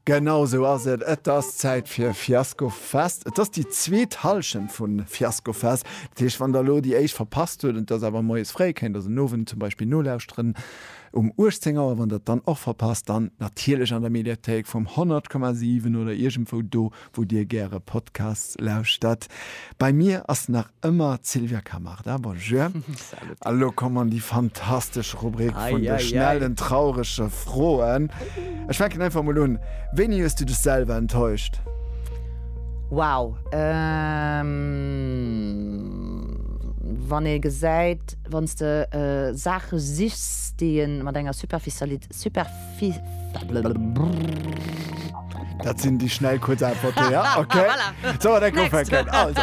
Genau sou ass et, et ass Zäit fir Fiasco Fest. Et ass déi zweet Hallschent vu Fiasco Fest. Dat heescht, wann der elo déi éischt verpasst huet, entweder awer moies fréi, kéint der se den Owend zum Beispill nolauschteren um 18 Auer. Wann der et dann och verpasst, dann natierlech an der Mediathéik vum 100,7 oder iergendwou do, wou dir gäre Podcasts lauschtert. Bei mir ass nach Ëmmer d'Sylvia Camarda, bonjour. Salut. A lo kommen déi fantastesch Rubrik vun de Eieiei. schnellen, traurege Froen. Ech fänken einfach emol un. Wéini hues du dech selwer enttäuscht? Wow, ehm, wann ee gesäit, wann s de Saache sichs, déi ee mat enger Superficiali-, Dat sinn déi schnell kuerz Äntwerten, ja, okay. Sollen mer direkt ufänken? Also,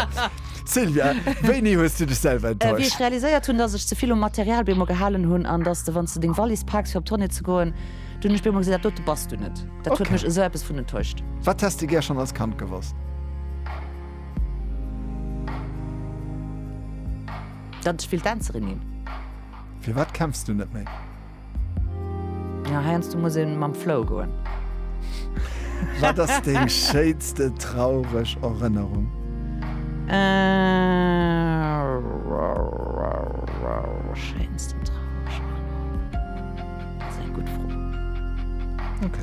Sylvia, wéini hues du dech selwer enttäuscht? Wéi ech realiséiert hunn, dass ech ze vill um Material bei emol gehalen hunn an dass de, wann s de deng Wallis paaks fir op Tournée ze goen, dunn hunn ech bei emol gesinn, dat dote bass du net. Dat huet mech esou eppes vun enttäuscht. Wat häss de gär schonn als Kand gewosst? Datt ech wéilt Dänzerin ginn. Firwat kämpfs du net méi? Ja heiansdo muss een mam Flow goen. Wat ass deng schéinste traureg Erënnerung? Schéinsten traureg Erënnerung? Dat ass eng gutt Fro. Ok.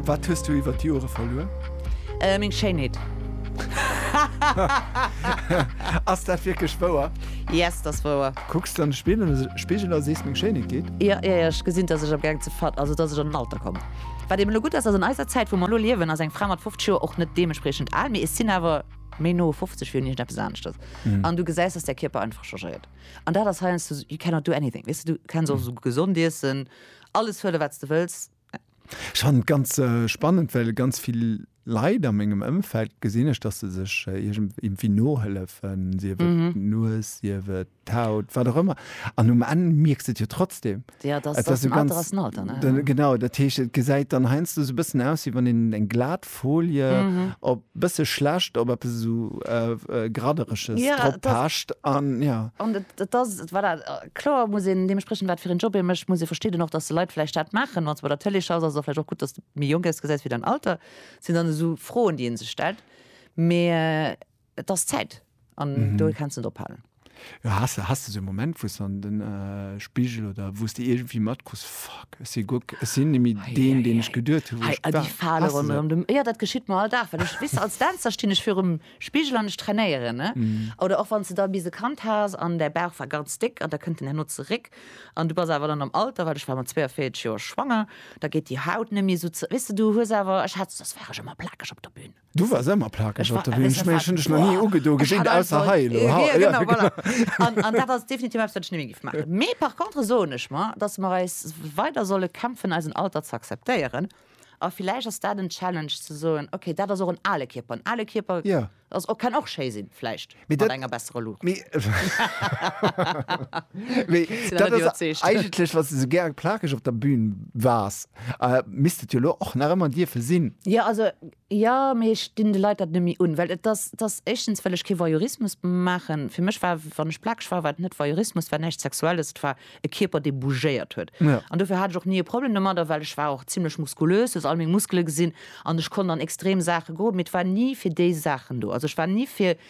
Wat hues du iwwer d'Jore verluer? Meng Schéinheet. Ass dat wierklech wouer? Yes, dat ass wouer. Kucks du an de Spigel a sees meng Schéinheet geet? Jo, jo, jo, ech gesinn, dass ech am Gaang ze ver-, also dass ech an den Alter kommen. Wat eben elo gutt ass, ass an eiser Zäit, wou mer elo liewen, ass eng Fra mat 50 Joer och net deementspriechend al, mee et sinn awer méi no 50 wéi un iergendeppes aneschters. An du gesäis, dass däi Kierper einfach changéiert. An dat ass heiansdo sou, you cannot do anything, weess de, du kenns och sou gesond iessen, alles huelen, wat s de wëlls. Ech fannen et ganz spannend, well ganz vill Leit a mengem Ëmfeld gesinn ech, dass se sech iergendwéi nohëllefen, sief et d'Nues, sief et d'Haut, wat och ëmmer. An um Enn mierks de et jo trotzdem. Jo, et ass den Alter, ass den Alter, ne? Genau, dat heescht, et gesäit dann heiansdo esou e bëssen aus, wéi wann een eng glat Folie op, e bësse schlecht, op eppes esou Graddereges drop pecht. An jo. An et ass, voilà, kloer muss een deementspriechend, wat fir een Job ee mécht, muss ee verstidden och, dass de Leit vläicht dat maachen, wann s de bei der Tëlee schaffs, ass et och vläicht och gutt, dass de méi jonk ausgesäis wéi dein Alter, sinn dann esou Froen, déi ee sech stellt. Mä et ass Zäit an do kenns de net ophalen. Jo, has de, has de esou e Moment, wou s de an de Spigel oder wou s de iergendwéi matkriss, Fuck, ech si guer, ech sinn nemme deen, deen ech geduet hu wou ech war? Hei, déi Fale ronderëm dem, jo, dat geschitt mer all Dag, well ech, weess de, als Dänzer stinn ech virum Spigel an ech trainéieren ne oder och wann s de da bis e Kand has an däi Bauch war ganz déck an da kënnt en herno zeréck an du bass awer dann am Alter, well ech war mat 42 Joer schwanger, da geet déi Haut net méi esou ze weess de, du hues awer, ech hat, sos war ech ëmmer plakeg op der Bühn. Du waars ëmmer plakeg op der Bühn, ech mengen ech hunn dech nach ni ugedo gesinn, ausser hei elo ha, jo genau, voilà an dat ass definitiv eppes wat ech net méi géif maachen. Mee par contre soen ech mer, datt mer eis weider solle kämpfen eisen Alter ze akzeptéieren. A villäicht ass dat en Challenge ze soen, okay, dat ass och en ale Kierper. En ale Kierper ass och, kann och schéi sinn, vläicht mat enger bessere Luucht. Mee dat ass eigentlech, wa s de sou gäre plakeg op der Bühn waars, misst et jo elo och nach ëmmer dierfe sinn. Jo, also Jo, mee ech dinn de Leit dat net méi un, well et ass, et ass éischtens, well ech kee Voyeurismus maachen. Fir mech war, wann ech plakeg war, war et net Voyeurismus, et war näischt Sexuelles, et war e Kierper, dee bougéiert huet. An dofir hat ech och ni e Problem domat. A well ech war och zimmlech muskulös, du hues all meng Muskele gesinn, an ech konnt an extrem Saache goen, mee et war ni fir déi Saachen do. Also ech war ni fir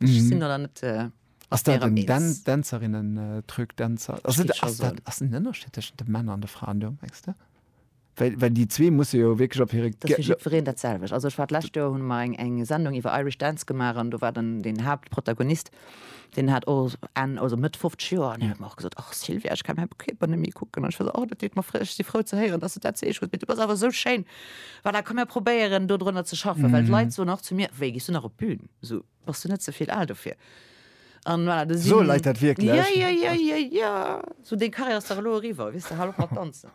Ech sinn da net mat där eens. Ass dat den Dänzerinnen-Truc, Dänzer, ass den Ënnerscheed tëschent de Männer an de Fraen do, mengs de? Well déi zwee musse jo wierklech op hire. Dat ass fir jiddwereen dat selwecht. Also ech war d'lescht Joer, hunn mer eng Sendung iwwer Irish Dance gemaach an do war dann deen Haaptprotagonist, deen hat och Enn, also Mëtt 50 Joer an hien huet mer och gesot, och Sylvia, ech kann mäi Kierper net méi kucken an ech war esou, oh dat deet mer fréi, ech si frou ze héieren, dass de dat sees. Ech gesot, mee du bass awer esou schéin, voilà, komm mir probéieren do drënner ze schaffen, well d'Leit soen och zu mir, wéi gees du nach op d'Bün? So, bass du net ze vill al dofir? An voilà, da So sinn- Leit dat wierklech? Ja, ja, ja, ja, ja. So, deng Karriär ass dach elo eriwwer, wiss de, hal op mat danzen.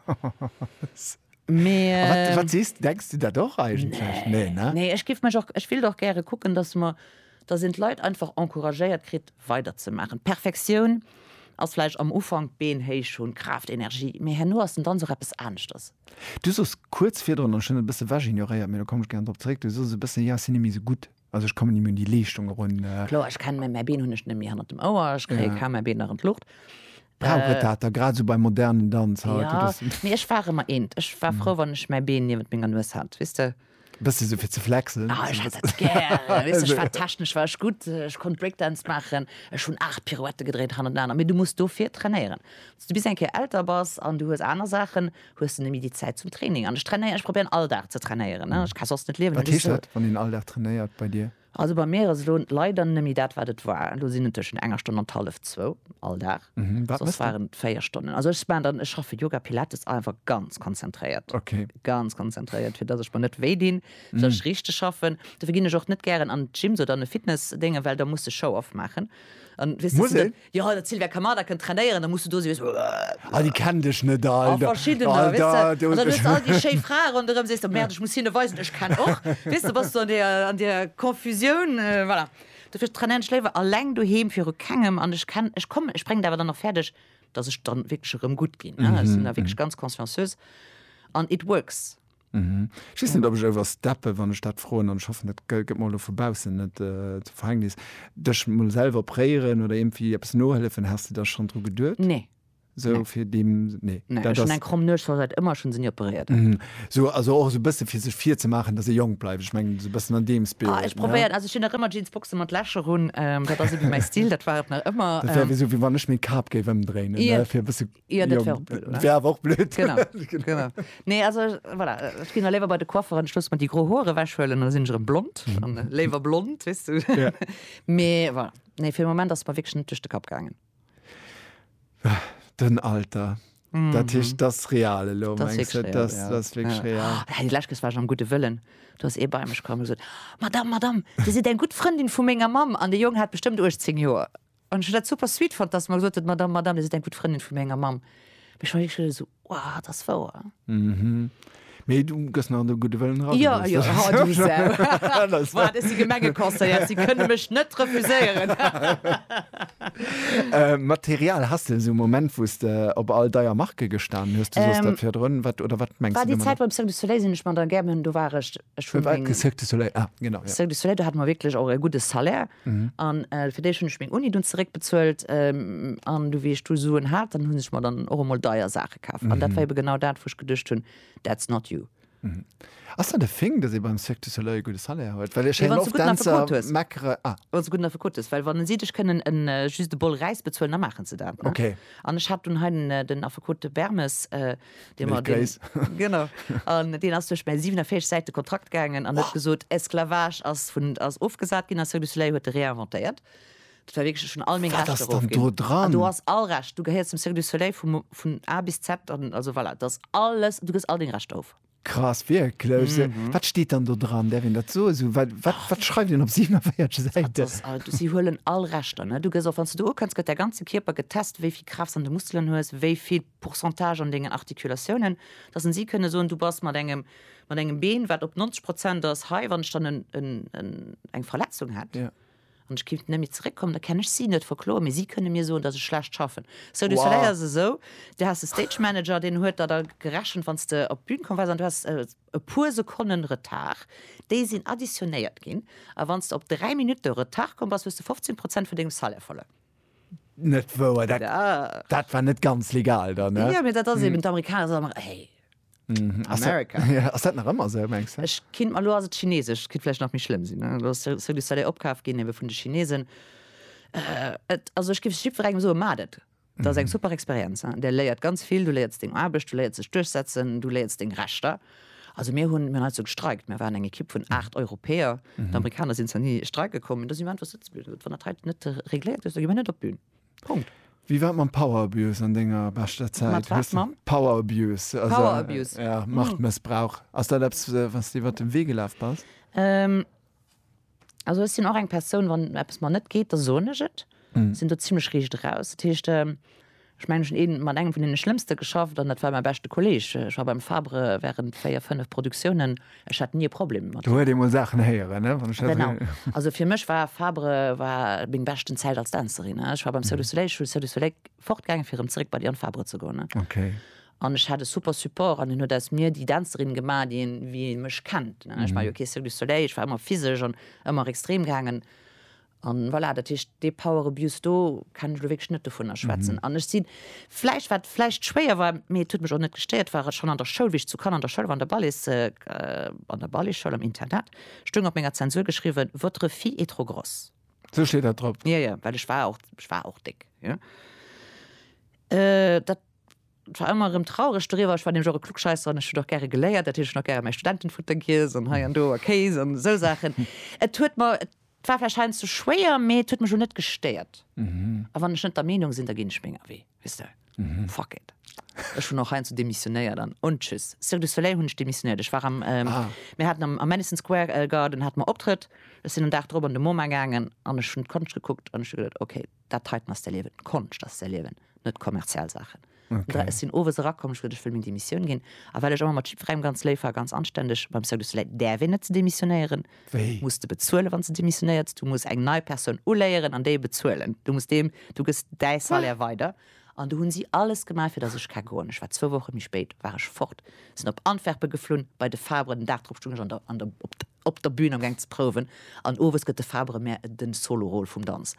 Mee, A Wat, wat ähm, sees du? Denks du dat och eigentlech? Nee, ne? Nee, ech géif mech och, ech wéilt och gäre kucken, dass mer, dass een d'Leit einfach encouragéiert kritt, weiderzemaachen. D'Perfektioun ass vläicht am Ufank, d'Been héich hunn, Kraaft, Energie, mee herno ass den Danz och eppes aneschters. Du sos kuerz virdrun, an ech hunn et e bësse ewech ignoréiert, mee do komme ech gären drop zeréck, du sos e bëssen, jo ech sinn net méi esou gutt, also ech kommen net méi un déi Leeschtung erun. Kloer, ech kenne mäi, mäi Been hunn ech net méi hannert dem Ouer, ech kréie kaum mäi Been nach an d'Luucht. Brauch et dat da, grad esou beim modernen Danz haut? Jo, mee ech war ëmmer eent, ech war frou wann ech mäi Been niewent menger Nues hat, weess de. Bësse sou fir ze flexen. Ah, ech hat dat gär. Weess, ech war technesch war ech gutt, ech konnt Breakdance maachen, ech hunn aacht Pirouette gedréit han an aner, mee du muss dofir trainéieren. Wann s du bis eng Kéier älter bass an du hues aner Saachen, hues de nëmme déi Zäit zum Training. An ech trainéieren, ech probéieren all Dag ze trainéieren, ech ka soss net liewen. Wat heescht dat, wann een all Dag trainéiert bei dir? Also bei mir ass elo leider nemme dat wat et war. Elo sinn et tëschent enger Stonn an hallef zwou all Dag. Soss waren et 4 Stonnen. Also ech maan dann, ech schaffe Yoga Pilates einfach ganz konzentréiert. Ganz konzentréiert fir dass ech mer net wéi dinn, fir dass ech richteg schaffen. Dofir ginn ech och net gären an Gyms oder an e Fitness Déngen, well da muss de Show-off maachen an weess de. Jo, dat Sylvia Kamada kënnt trainéieren, da muss du do si, weess du. Ah, déi kennt ech net all. A verschiddener, weess du. An dann hues du all déi schéi Frae ronderëm, sees du, merde, ech muss hinne weisen, ech kenn och. Weess du, bass du an deer, an deer Confusioun, voilà. Dofir trainéieren ech léiwer eleng doheem viru kengem an ech kenn, ech kommen, ech bréngen et awer dann och fäerdeg, dass ech dann wierklech erëm gutt ginn, ne. Ech sinn da wierklech ganz consciencieus an it works. Ech weess net, ob ech oversteppen, wann ech dat froen, an ech hoffen, dat gëtt mer elo vu baussen net zum Verhängnis, dech emol selwer opréieren oder iergendwéi eppes nohëllefen. Has de da schonn dru geduet? Nee. Esou fir deem, nee. Nee, ech hunn eng kromm Nues, scho säit ëmmer, ech hunn se ni operéiert. Esou, also och esou e bësse fir sech virzemaachen, datt ee jonk bleift, ech mengen esou e bëssen an deem Spirit, ne? Ech probéieren, also ech hunn nach ëmmer Jeansboxen mat Lächer un, dat ass iergendwéi mäi Stil, dat war et nach ëmmer. Dat wär esou, wéi wann ech meng Kap géif ëmdréinen, fir e bësse. Jo, dat wär och blöd, oder? Wär awer och blöd. Genau, genau. Nee, also, voilà, ech ginn da léiwer bei de Coiffeur an ech loosse mer déi gro Hoer ewechhuelen an da sinn ech erëm blond. An léiwer blond, weess du. Ja. Mee voilà, nee, fir de Moment ass et mer wierklech net duerch de Kapp gaangen. Den Alter. Dat heescht, dat ass real elo, Dat ass mengs wierklech du? real, Dat ja. dat ass wierklech real. Oh, déi lescht Kes war ech am gudde Wëllen. Do ass ee bei mech komm a gesot, Madame, Madame, Dir sidd eng gutt Frëndin vu menger Mamm an de Jong hat bestëmmt 18 Joer. An ech hun dat super sweet fand, dass mer gesot huet, d'Madame Madame, Dir sidd eng gutt Frëndin vu menger Mamm. Mee ech war wierklech elo esou, Wow, dat ass wouer. Mee du gëss nach de gudde Wëllen eran. Jo, jo, ha du Sau. Wow, dat ass déi Gemengeconseillère, si kënne mech net refuséieren. Material, Has de esou e Moment, wou s de op all deier Marke gestan hues? Du sooss dat virdrun, wat oder wat mengs du domadder? War déi Zäit beim Cirque du Soleil, sinn ech mat der Gerben, do war ech. Ech hunn meng. Cirque du Soleil, ah, genau, ja. Cirque du Soleil, do hat mer wierklech och e gudde Salaire. An fir déi ech hunn ech meng Uni dunn zeréckbezuelt. An du wéi ech du Suen hat, dann hunn ech mer dann och emol deier Saache kaf. An dat war ebe genau dat, wou ech geduecht hunn, that's not you. Ass dat e Thing, dass ee beim Cirque du Soleil e gudde Salaire huet? Well ech héieren oft Dänzer meckere. Wa se e gudden Affekot hues. Well wann si dech kënnen en just e Bol Räis bezuelen, da maachen se dat, ne? Okay. An ech hat dunn hei den Affekot, de Bermes. Deen war deen, genau, an deen ass duerch mäi 47 Säite Kontrakt gaangen an huet gesot, Esclavage ass vun, ass ofgesat ginn a Cirque du Soleil huet e réinventéiert. Dat war wierklech, ech hunn all meng Wat Rechter ass dann do erofginn. An dran? du ass all Recht, du gehéiers dem Cirque du Soleil vu mo, vun A bis Z, an also voilà, et ass alles, du kriss all deng Rechter erof. Krass, wierklech? Se, wat steet dann do dran? Däerf een dat soen? Esou, wat, wat, wat schreift een op 47 Dat Säiten? ass all, du, si huelen all Rechter, ne? Du gëss och, wann s du do ukënns, gëtt däi ganze Kierper getest, wéi vill Kraaft s an de Muskelen hues, wéi vill Pourcentage an dengen Articulatiounen, dass en si kënne soen, du bass mat engem, mat engem Been, wat op 90 Prozent ass, hei, wann ech dann en, en, en, eng Verletzung hätt. Ja. An ech kéint net méi zeréckkommen, da kann ech si net verkloen, mee si kënne mir soen, dass ech schlecht schaffen. Cirque du Soleil ass esou, du has e Stage Manager, deen huet der da gerechent, wann s de op d'Bün komm wars an du has e puer Sekonnen Retard, déi sinn additionéiert ginn, a wann s de op dräi Minutte Retard komm bass, hues de 15 Prozent vun dengem Salaire verluer. Net wouer, dat, dat war net ganz legal dann. Ne? Ja, mir dat ass eben d'Amerikaner so nach hey. Mm, ass America. Dat, ja, ass dat nach ëmmer se mengst du? Ech kind mal lo ass et Chinesesch, kit flläch nach méi schlëmm sinn. Ne? Lo ass Cirque du Soleil opkaf ginn ebe vun de Chinesen. Äh, et, also ech gif jippwer engem so madet. Dat ass eng super Experienz. Hein? Der léiert ganz vill, du léierts deng Aarbecht, du léierts sech duerchsetzen, du léierts deng Rechter. Also mir hunn mir also gestreikt, mir waren eng Ekipp vun aacht Europäer. Mhm. D'Amerikaner sinn zwar ni streike kommen, dat si mir einfach sitze bliwwen. Wann dat hei net äh, regléiert ass, da gi mir net op d'Bün. Punkt. Wie war mam Power Abuse an denger beschter Zäit? Mat wat, mam? Power Abuse. Also, Power Abuse. Äh, ja, Machtmëssbrauch. Ass dat eppes, äh, was du iwwer den Wee gelaf bass? Ähm, Also ech sinn och eng Persoun, wann eppes mer net geet, da soen ech et. Ech sinn do zimmlech riicht eraus. Dat heescht, ech mengen, ech hunn ee mat engem vun deene Schlëmmste geschafft an dat war mäi beschte Kolleeg. Ech war beim Fabre wärend véier, fënnef Produktiounen, ech hat ni e Problem mat him. Do huet ee mol Saachen héieren, ne, wann ech dat esou. Genau. Also fir mech war Fabre war meng beschten Zäit als Dänzerin. Ech war beim Cirque du Soleil, ech hunn Cirque du Soleil fortgaangen, fir erëm zeréck bei Diane Fabre ze goen. Okay. An ech hat e super Support an hien huet aus mir déi Dänzerin gemaach, déi een, wéi ee mech kennt, ne? Ech war jo kee Cirque du Soleil, ech war ëmmer physesch an ëmmer extrem gaangen. An voilà, dat heescht, dee Power Abuse do kann ech elo wierklech net dovunner schwätzen. An ech sinn vläicht, wat vläicht schwéier war, mee et huet mech och net gestéiert, war schonn an der Schoul, wéi ech zu Cannes an der Schoul war, an der Ballets, an der Balletschoul, am Internat, stoung op menger Zensur geschriwwen, Votre fille est trop grosse. Esou steet dat drop? Jo, jo, well ech war och, ech war och déck, jo. Dat. Et war ëmmer erëm traureg doriwwer. Ech war nämlech och e Klugscheisser an ech hunn och gäre geléiert. Dat heescht, ech hunn och gäre mäi Studentenfutter giess an hei an do a Kéis an esou Saachen. Et huet mer, et war vläicht heiansdo schwéier, mee et huet mech elo net gestéiert. A wann ech net der Meenung sinn, da ginn ech menger Wee, weess de. Fuck it. Ech hunn och heiansdo demissionéiert an, und tschüss. Cirque du Soleil hunn ech demissionéiert. Ech war am, mir haten am Madison Square Garden hate mer Optrëtt. Ech sinn en Dag drop an de MoMA gaangen an ech hunn d'Konscht gekuckt an ech hu geduet, okay, Dat heiten ass d'Erliewen, Konscht ass d'Erliewen, net kommerziell Saachen. Okay. Ech sinn owes erakomm, ech wëll, ech wëll meng Demissioun ginn. A well ech ëmmer mat Jip Reim ganz léif war, ganz anständeg, beim Cirque du Soleil däerf een net ze demissionéieren. Wéi? Muss de bezuelen, wann s de demissionéiers. Du muss eng nei Persoun uléieren an déi bezuelen. Du muss deem, du gëss däi Salaire weider. An du hunn si alles gemaach, fir dass ech ka goen. Ech war zwou Woche méi spéit war ech fort, sinn op Antwerpen geflunn, bei de Fabre, den Dag drop stung ech an der, an der, op der, op der Bühn am Geng ze prouwen an owes gëtt de Fabre mär den Solo-Rôle vum Danz.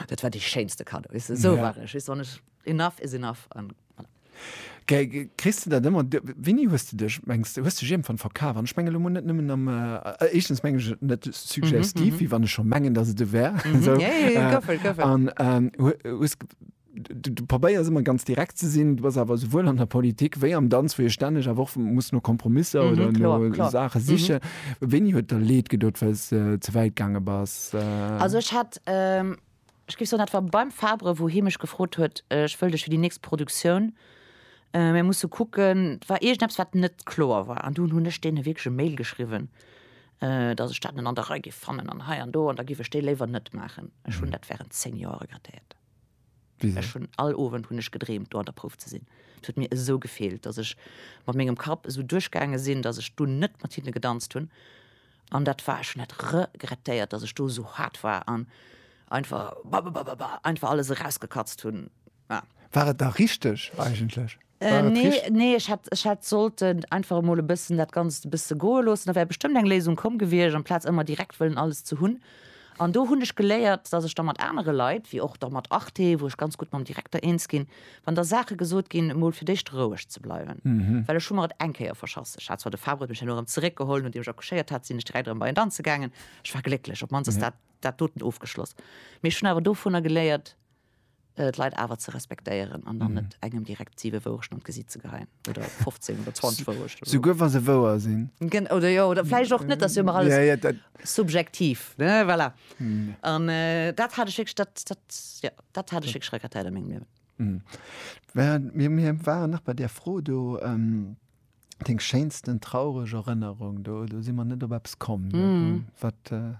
Dat war dee schéinste Cadeau, weess de, esou war ech, weess de, wann ech, enough is enough an voilà. Kriss de dat ëmmer? Wéini hues de dech, mengs de, hues de dech iergendwann verkaf? An ech mengen elo mol net nëmmen am, éischtens mengen ech et net suggestiv, wéi wann ech scho mengen, datt et esou wär, esou, an hues, Du, du probéiers ëmmer ganz direkt ze sinn, du bass awer souwuel an der Politik wéi am Danz, wou ee stänneg awer och muss no Kompromisser oder no Klar, klar. Saache sichen. Wéini huet der leed gedot, well s de ze wäit gaange bass? Also ech hat, ech géif soen, dat war beim Fabre, wou hie mech gefrot huet, ech wëll dech fir déi nächst Produktioun, mir musse kucken, et war iergendeppes, wat net kloer war. An dunn hunn ech deene wierklech e Mail geschriwwen, datt ech dat net an der Rei géif fannen an hei an do, an da géif ech déi léiwer net maachen. Ech hunn dat wärend zéng Joer regrettéiert. Ech hunn all Owend hunn ech gedreemt do an der Prouf ze sinn. Et huet mir esou gefeelt, datt ech mat mengem Kapp esou duerchgaange sinn, datt ech do net mat hinne gedanzt hunn an dat war, ech hunn dat regrettéiert, datt ech do esou haart war an einfach bababababa einfach alles erausgekatzt hunn. War et da richteg eigentlech? War et Nee, richt- nee, ech hätt, ech hätt sollten einfach emol e bëssen dat Ganzt e bësse goe loossen. Da wär bestëmmt eng Léisung komm gewiescht, amplaz ëmmer direkt wëllen alles ze hunn. An do hunn ech geléiert, datt ech da mat anere Leit, wéi och da mat Arte, wou ech ganz gutt mam Direkter eens ginn, wann da Saache gesot ginn, emol fir d'éischt roueg ze bleiwen. Well ech hu mer et eng Kéier verschass. Ech hat zwar, de Fabre huet mech herno erëm zeréckgeholl, nodeem ech accouchéiert hat, sinn ech direkt erëm bei en danze gaangen. Ech war glécklech, op d'mannst ass dat dat doten ofgeschloss. Mee ech hunn awer dovunner geléiert. d'Leit awer ze respektéieren an dann mhm. net engem direkt 7 Wourechten an d'Gesiit ze geheien oder 15 oder 20 Wourechten. So, souguer wa se wouer sinn. Gen oder jo, oder fläich och net, dass jo immer alles ja, ja, subjektiv ne voilà. mhm. an äh, dat hat ech dat, dat, ja, dat hat ech Schreckerteil am engem Liewen. Mhm. Mir, mir waren nach bei der Fro do. Ähm, Deng schéinsten traureg Erënnerung do do si man net op Apps kommen mm. wat äh,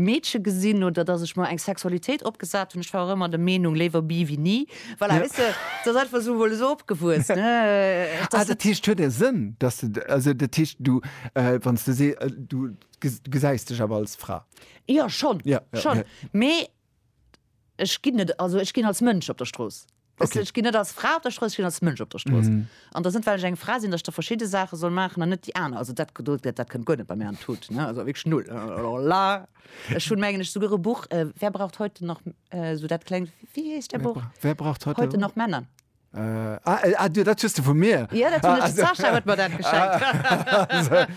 Meedche gesinn oder dass ech mer eng Sexualitéit opgesat hunn. Ech war och ëmmer der Meenung, léiwer bi wéi ni. Voilà, weess de, et ass einfach esou, mol esou opgewuess, ne, dass et. Ah, dat heescht, et huet e Sënn, dass de, also dat heescht, du, wann s de se, du gesäis dech awer als Fra? Jo, schonn, schonn, mee ech ginn net, also ech ginn als Mënsch op der Strooss. Weess de, ech ginn net als Fra op der Strooss, ech ginn als Mënsch op der Strooss. An dass net, well ech eng Fra sinn, dass ech da verschidde Saache soll maachen an net déi aner. Also dat Geduld, dat kënnt guer net bei mir an d'Hut, ne. Also wierklech null. Alors là, ech hunn, mengen ech, souguer e Buch, Wer braucht heute noch, esou dat klengt, wéi heescht dat Buch? Wer braucht heute, heute noch Männer? Ah, ah, dat hues de vu mir? Jo, dat hunn ech, de Sascha huet mer dat geschenkt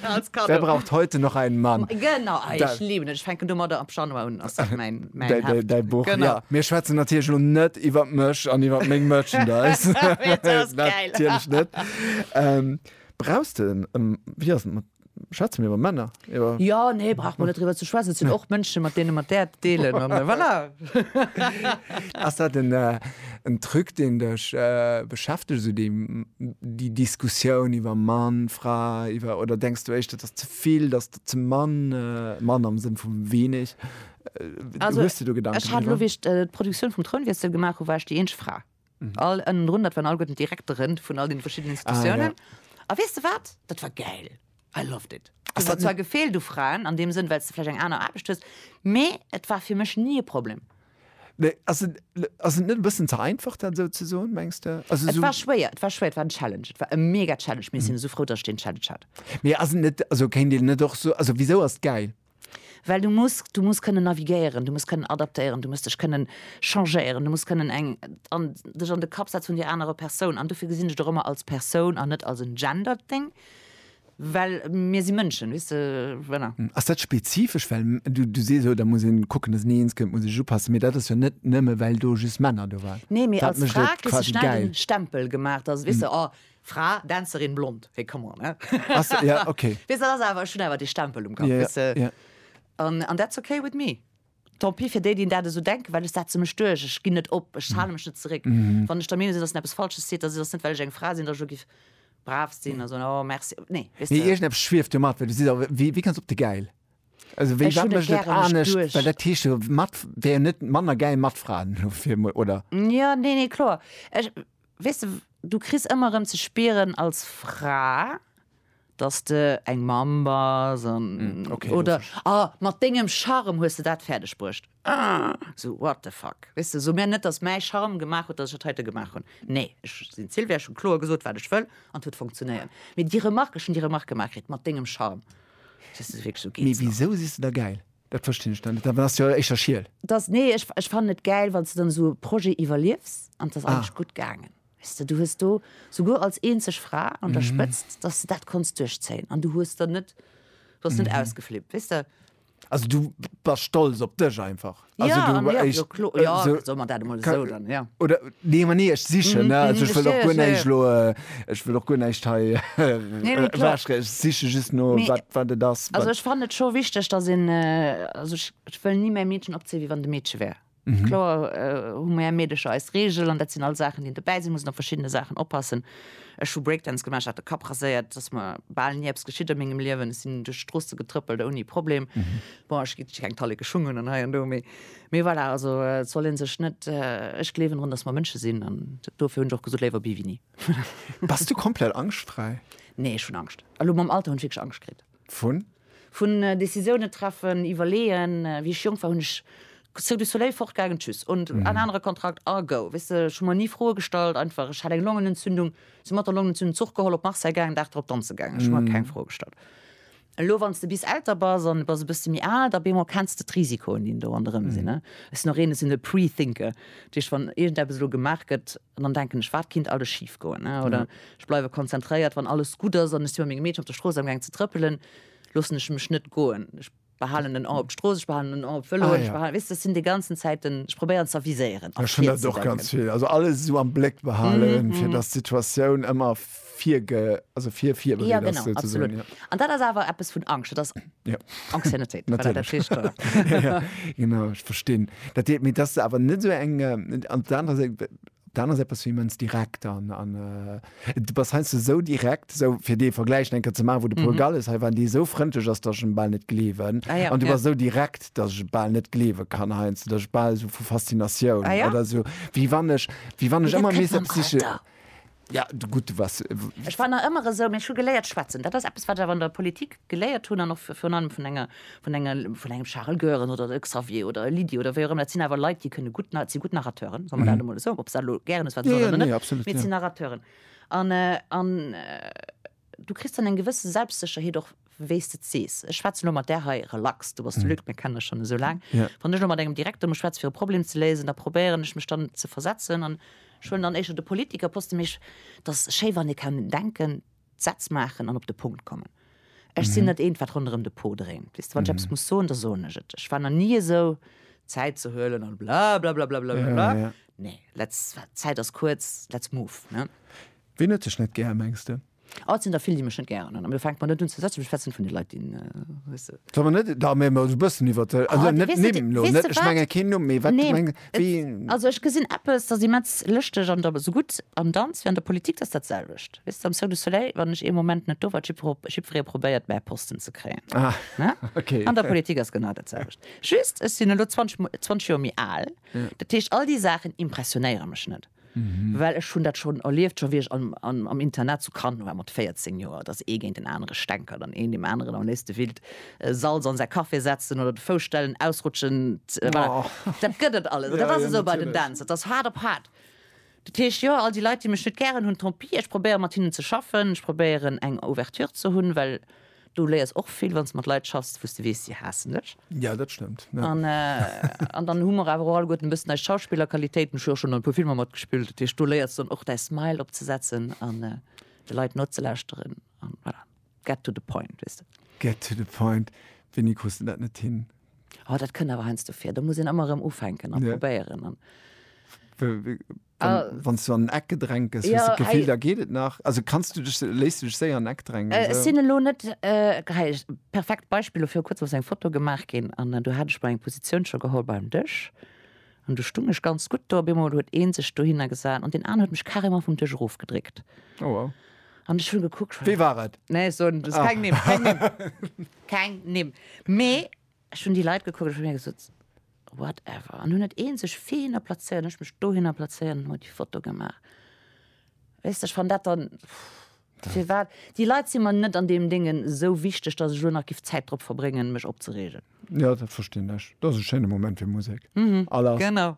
als Kaddo. Wer braucht heute noch einen Mann? Genau, ah, ech liiwen et, ech fänken domadder ab Januar un, ass dat mäin. Däi, däi, däi Buch, genau. ja. Mir schwätzen natierlech lo net iwwer mech an iwwer meng Merchandise. natierlech net. Ähm, brauchst du en, ähm, wie ass mat Schätze mir iwwer Männer? Iwwer ja nee brauch man net driwwer ze schwätzen, sinn och Mënsche mat deene mat där deelen an äh, voilà. Ass dat en, äh, en Truc deen dech äh, beschäftegt so déi, déi Diskussioun iwwer Mann, Fra iwwer oder denkst du éischt dat ass ze vill, dat ass ze mann, äh, Mann am Sënn vu weeneg? Also, Hues du do Gedanken Ech hat lo, driwwer? wéi ech d'Produktioun vum Trounwiessel gemaach hu, war ech déi eenzeg Fra. All ënnendrun, dat waren alleguerten d'Direktere vun all deene verschiddenen Institutiounen. A weess de wat? Dat war gäil. I loved it. Ass Et dat huet zwar net. gefeelt u Fraen an deem Sënn, well s de vläicht eng aner Aarbecht hues, mee et war fir mech ni e Problem. Nee, ass et, ass et net e bëssen ze einfach, dat esou ze soen, mengs de? Also, Et esou, war schwéier, et war schwéier, et war en Challenge, et war e mega Challenge, mee ech sinn esou frou, datt ech deen Challenge hat. mee ass et net, also kéint een net och soen, also, wisou ass et gäil? Well du muss, du muss kënnen navigéieren, du muss kënnen adaptéieren, du muss dech kënnen changéieren, du muss kënnen eng, an dech an de Kapp setze vun där anerer Persoun. An dofir gesinn ech et och ëmmer als Persoun an net als en Gender-Ding, well mir si Mënschen, weess de, voilà. Ass dat spezifesch, well du, du sees, oh da muss een kucken, dass ni eens kënnt, muss ech upassen, mee dat ass jo net nëmme well do just Männer do waren. Nee, mee als Fra kriss de schnell den Stempel gemaach, dass, weess de, oh Fra, Dänzerin, blond, hé come on, hä? Jo, ok. Weess dat ass awer, ech hunn awer dee Stempel um Kapp, weess de. Jo, jo. An that's ok with me. Tant pis fir déi, déi dat esou denken, well ech setze mech duerch, ech ginn net op, ech hale mech net zeréck. Wann ech der Meenung sinn, dass een eppes Falsches seet, dass et ass net, well ech eng Fra sinn, dass ech elo giff brav sinn a soen, oh merci, nee, weess Nee, de. iergendeppes schwieft jo mat, well du sis awer, wéi, wéi kanns op de Gäil? Also wéi, Ech wat hunn et mécht et gären, mech anescht? Well duerch. dat heescht jo, mat, wär jo net manner gäil mat Fraen, elo fir emol, oder? Jo, nee, nee, kloer. Ech, weess de, du kriss ëmmer erëm ze spieren als Fra, dass de eng Mamm bass an okay, oder ah, mat dengem Charme hues de dat fäerdeg bruecht. Ah, sou what the fuck, weess de, sou mir net, dass mäi Charme gemaach huet, dass ech dat heite gemaach hunn. Nee, ech sinn d'Sylvia, ech hu kloer gesot, wat ech wëll an et huet funktionéiert. Mee déi Remark, ech hunn déi Remark gemaach kritt, mat dengem Charme. Mee wisou siss de da gäil? Dat verstinn ech dann net. Dann ass jo éischter schiel. Dass, nee, ech, ech fannen et gäil, wann s de dann esou e Projet iwwerliefs an et ass Ah. eigentlech gutt gaangen. Weess de, du hues do, souguer als eenzeg Fra an der Spëtzt, dass de dat konns duerchzéien an du hues der net, du ass net ausgeflippt, weess de. Also du bass stolz op dech einfach? Also Ja, du an, ja, jo, klo, jo, sou, soe mer dat emol ka, esou dann, ja. oder Nee Mann nee ech sichen ne also ech wëll och guer näischt elo ech wëll och guer näischt hei ewechschreiwen ech siche just no wat wat et ass also ech fannen et scho wichteg datt een also ech ech wëll ni mäi Meedchen opzéien wéi wann et e Meedche wär kloer hu mär Meedecher eis Reegel an dat sinn all Saachen déi een dobäi si muss an op verschiddene Saachen oppassen ech hu Breakdance gemaach ech hat de Kapp raséiert et ass mer bal ni eppes geschitt a mengem Liewen ech sinn duerch d'Stroosse getrëppelt ouni Problem bon ech hu keng Talleke Schung un an hei an do mee Mee voilà, also et soll ee sech net, ech gleewen drun, datt mer Mënsche sinn an dofir hunn ech och gesot, léiwer bi wéi ni. Bass du komplett angschtfräi? Nee, ech hunn Angscht. Elo mam Alter hunn ech wierklech Angscht kritt. Vun? Vun Décisiounen treffen, iwwerleeën. Wéi ech jonk war, hunn ech Cirque du Soleil, fortgaangen, tschüss und en anere Kontrakt a go. Weess de, ech hu mer ni Froe gestallt, einfach. Ech hat eng Longenentzündung, si mat der Longenentzündung Zuch geholl, op Marseille gaangen, Dag drop danze gaangen. Ech hu mer keng Froe gestallt. Elo wann s de bis älter bass an de bass e bësse méi al, da bemol kenns de d'Risikoen, déi do ronderëm sinn. Ech sinn och een, ech sinn e Pre-Thinker. Dat heescht, wann iergendeppes elo gemaach gëtt, dann denken ech, wat kinnt alles schif goen. Oder ech bleiwe konzentréiert, wann alles gutt ass an ech si mat mengem Meedchen op der Strooss amgaang ze trëppelen, loossen ech mech net goen. Ech behalen en Oi op d'Strooss, ech behalen en Oi op d'Vëloen, ech behalen, weess de, ech sinn déi ganzen Zäit den, ech probéieren z'aviséieren a virzedenken. Ech hunn dat och ganz vill. Also alles esou am Bléck behalen, fir datt d'Situatioun ëmmer virge, also vir, virbereet ja, genau, ass, absolut. Ja. An dat ass awer eppes vun Angst, dat ass ja. Anxiétéit. ja, ja. Genau, ich verstinn. Dat deet mir dat awer net so eng äh, an der anderen Seite dann ass etwas wemens direkt an an äh, du was heißt du so direkt so fir dee Vergleich enke ze ma wo de mhm. Portugal is he waren déi so fronteg ass derschen ball net glewen ah, ja, an du ja. war so direkt dat je ball net glewe kann heinz der ball so vu Faszinatioun ah, ja. oder so wie wann ech wie wann ech immer mé psyche. Alter. Ja, gutt, was. Ech war nach ëmmer esou, mee ech hu geléiert schwätzen. Dat ass eppes, wat ech awer an der Politik geléiert hunn an och virun allem vun enger, vun enger, vun engem Charel Goeren oder e Xavier oder e Lydie oder wéi och ëmmer. Dat sinn awer Leit, déi kënne gutt, si gutt Narrateuren, solle mer dat emol esou, ob se dat elo gären hues, wat se oder net, mee et sinn Narrateuren. An, an. Du kriss dann eng gewësse Selbstsécherheet och, wéi s de et sees. Ech schwätzen elo mat där hei relax, du bass de Luc, mir kennen dech schonn esou laang. Wann ech elo mat engem Direkter muss schwätzen, fir e Problem ze léisen, da probéieren ech mech dann ze versetzen an ech huelen dann éischter de Politiker poste. Mee ech, et ass schéi, wann ee kann denken, d'Sätz maachen an op de Punkt kommen. Ech sinn net eent, wat ronderëm de Pot dréint, weess de. Wann ech eppes muss soen, da soen ech et. Ech war nach ni esou, Zäit ze huelen an blablabla, blablabla. Nee, let's, Zäit ass kuerz, let's move, ne? Ween huet dech net gär, mengs de? Oh, et sinn der vill, déi mech net gären hunn. An da fänkt mer net un ze schwätzen. Ech schwätzen vun de Leit, déi, weess de. Solle mer net da méi emol esou e bëssen iwwert de, also net Nimm elo, net, ech menge keen Numm, mee wat meng, wéi. Also ech gesinn eppes, dat ass immens lëschteg an esou gutt am Danz wéi an der Politik, dat ass dat selwecht, weess de, am Cirque du Soleil, wann ech ee Moment net do war, huet jiddweree probéiert, mäi Posten ze kréien. An der Politik ass genau dat selwecht, just ech sinn elo 20 Joer méi al, dat heescht all déi Saachen impressionéiere mech net. Well ech hunn dat schonn erlieft, scho wéi ech am Internat zu Cannes war mat 14 Joer, datt ee géint en anere stänkert an een deem aneren am léifste willt Salz an säi Café setzen oder de Fouss stellen, ausrutschen, voilà. Dat gëtt et alles. Dat ass esou bei den Dänz, dat ass haart op haart. Dat heescht, jo, all déi Leit, déi mech net gären hunn, tant pis, ech probéieren, mat hinnen ze schaffen, ech probéieren, eng Ouverture ze hunn, well Du léiers och vill wann s de mat Leit schaffs, wou s de weess, si haassen dech. Jo, dat stëmmt. An dann hu mer awer och alleguerten e bëssen eis Schauspillerqualitéiten. Ech hu jo och schonn an e puer Filmer matgespillt. Dat heescht, do léiers de dann och däi Smile opzesetzen an de Leit nozelauschteren an voilà, get to the point, weess de. Get to the point. Wéini krus de dat net hin? Oh, dat kënnt awer heiansdo vir. Da muss een ëmmer erëm ufänken a probéieren. Wann s du an en Eck gedrängt gëss, hues de d'Gefill, da geet et nach? Also kanns du dech, léiss du dech séier an en Eck drängen? Esou? Ech sinn elo net, hei, perfekt Beispill, dofir, kuerzem ass eng Foto gemaach ginn an do hat ech mol eng Positioun scho geholl beim Dësch an do stung ech ganz gutt do. Op eemol huet ee sech dohinner gesat an deen aner huet mech carrément vum Dësch erofgedréckt. Oh wow. An ech hunn gekuckt. Wee war et? Nee, ech soen keng Nimm, keng Nimm, keng Nimm. Mee Ech hunn déi Leit gekuckt, ech hu mir gesot, whatever, an hunn et eenzeg fine plazéiert, ech mech dohinner plazéiert an hu déi Foto gemaach. Weess de, ech fann dat dann, firwat, déi Leit si mer net an deem Déngen esou wichteg, datt ech elo nach giff Zäit drop verbréngen, mech opzereegen. Jo, dat verstinn ech. Dat ass e schéine Moment fir Musek. Genau.